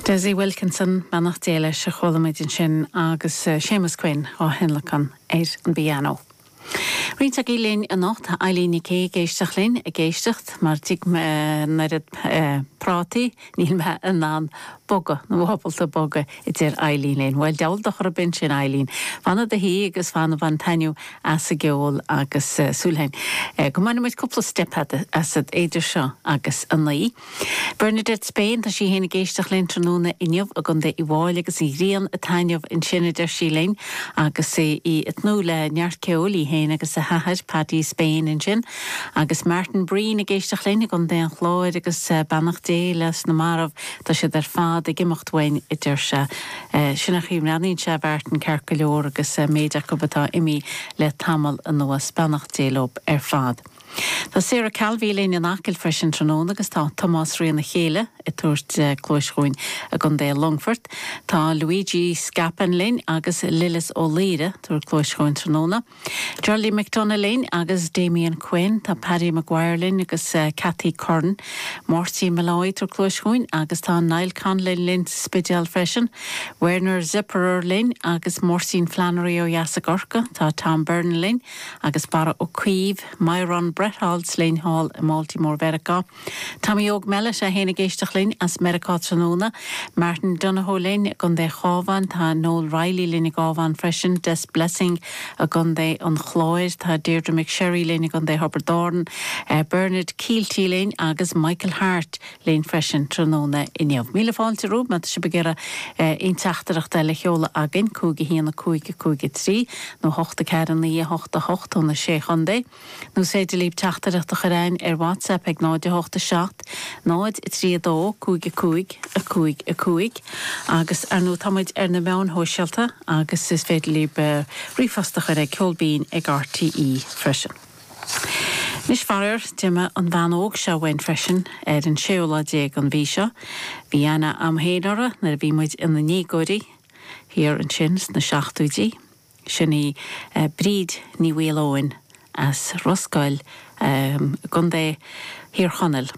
Desi Wilkinson, Beannacht Dé leis, a chuala muid ansin agus Séamus Quinn á thionlacan ar an bpianó. Roinnt agaibh linn anocht, tá Eileen Nic Aoidh ag éisteacht linn, ag éisteacht mar d'ith mé an oiread prátaí níl mé in ann bogadh, nó ábalta bogadh a deir Eileen linn. Bhuel, deabhal dochar a b'in sin Eileen. Fan i do shuí agus fan, bain taitneamh as an gceol agus súil againn go mbainfidh muid cúpla steip asat eidir seo agus a naoi. Bernadette Spain, tá sí féin ag éisteacht linn tráthnóna inniu i gContae Uíbh Fhailí agus an ghrian ag taitneamh ansin a deir sí linn agus í ag tnúth le neart ceoil, í féin agus a hathair Paddy Spain ansin. Agus Martin Breen ag éisteacht linn i gContae an Chláir agus beannacht Dé leis na marbh, tá siad ar fad ag imeacht uainn a deir sé. Sin an chaoi a mbreathnaíonn sé a Mhartin ceart go leor agus an méid acu atá imithe le tamall anuas, beannacht Dé leo ar fad. Tá Sarah Calvey linn in Acaill freisin tráthnóna agus tá Tomás Rionn, a chéile, ag tabhairt cluais dhúinn i gContae Longfort. Tá Luigi Scapin linn agus Lillis Ó Laoire ag tabhairt cluais dhúinn tráthnóna. Geraldine McDonagh linn agus Damian Quinn, tá Paddy Maguire linn agus Cathy Curran, Máirtín Molloy ag tabhairt cluais dhúinn agus tá Niall Conlon linn sa Spidéal freisin, Werner Zipperer linn agus Máirtín Flannery ó dheas i gCorcaigh, tá Tom Byrne linn agus Barra Ó Caoimh, Myron Bretholz linn thall i mBaltimore Mheiriceá. Tommy Óg Mellett é féin ag éisteacht linn as Meiriceá tráthnóna, Martin Donohoe linn i gContae an Chabháin, tá Noel Reilly linn i gCabhán freisin, Des Blessing i gContae an Chláir, tá Deirdre McSherry linn i gContae Thiobraid Árann, Bernard Kielty linn agus Michael Harte linn freisin tráthnóna inniu. Míle fáilte romhaibh má tá sibh ag iarraidh aon teachtaireacht eile a sheoladh againn, 5 1 5 5 3 nó 8 4 9 8 8 ó na Sé Chontae. Nó 's féidir libh teachtaireacht a chur againn ar WhatsApp ag 0 8 7 0 3 2 5 5 5 5 agus ar ndóigh tá muid ar na meáin shóisialta agus is féidir libh ríomhphost a chur ag ceol binn ag rte freisin. Anois faraor, d'imigh an bhean óg seo uainn freisin ar an séú lá déag an mhí seo. Bhí aithne agam féin uirthi nuair a bhí muid ina ndéagóirí, thiar ansin sna seachtóidí. Sin í Bríd Ní Mhaoileoin as Ros Goill i gContae Thír Chonaill.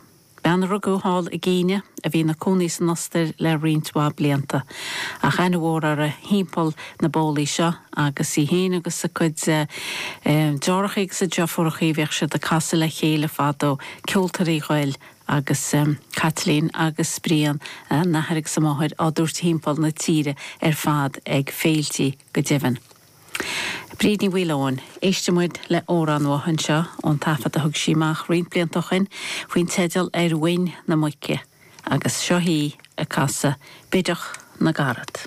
Bean a rugadh thall i gCéinia a bhí ina cónaí san Ostair le roinnt mhaith blianta. Ach aithne mhór uirthi thimpeall na bólaí seo agus í fhéin agus a cuid deartháireachaí agus a deirfiúrachaí bhíodh siad ag casadh le chéile fadó, Ceoltóirí Ghoill. agus Caitlín agus Brian, a n-athair agus a máthair, á dtabhairt timpeall na tíre ar fad ag féiltí, go deimhin. Bríd Ní Mhaoileoin. Éistfidh muid le hamhrán uaithi anseo, ón taifead a thug sí amach roinnt blianta ó shoin, faoin teideal Ar Mhuin na Muice, agus seo í ag casadh Bídeach na gCarad.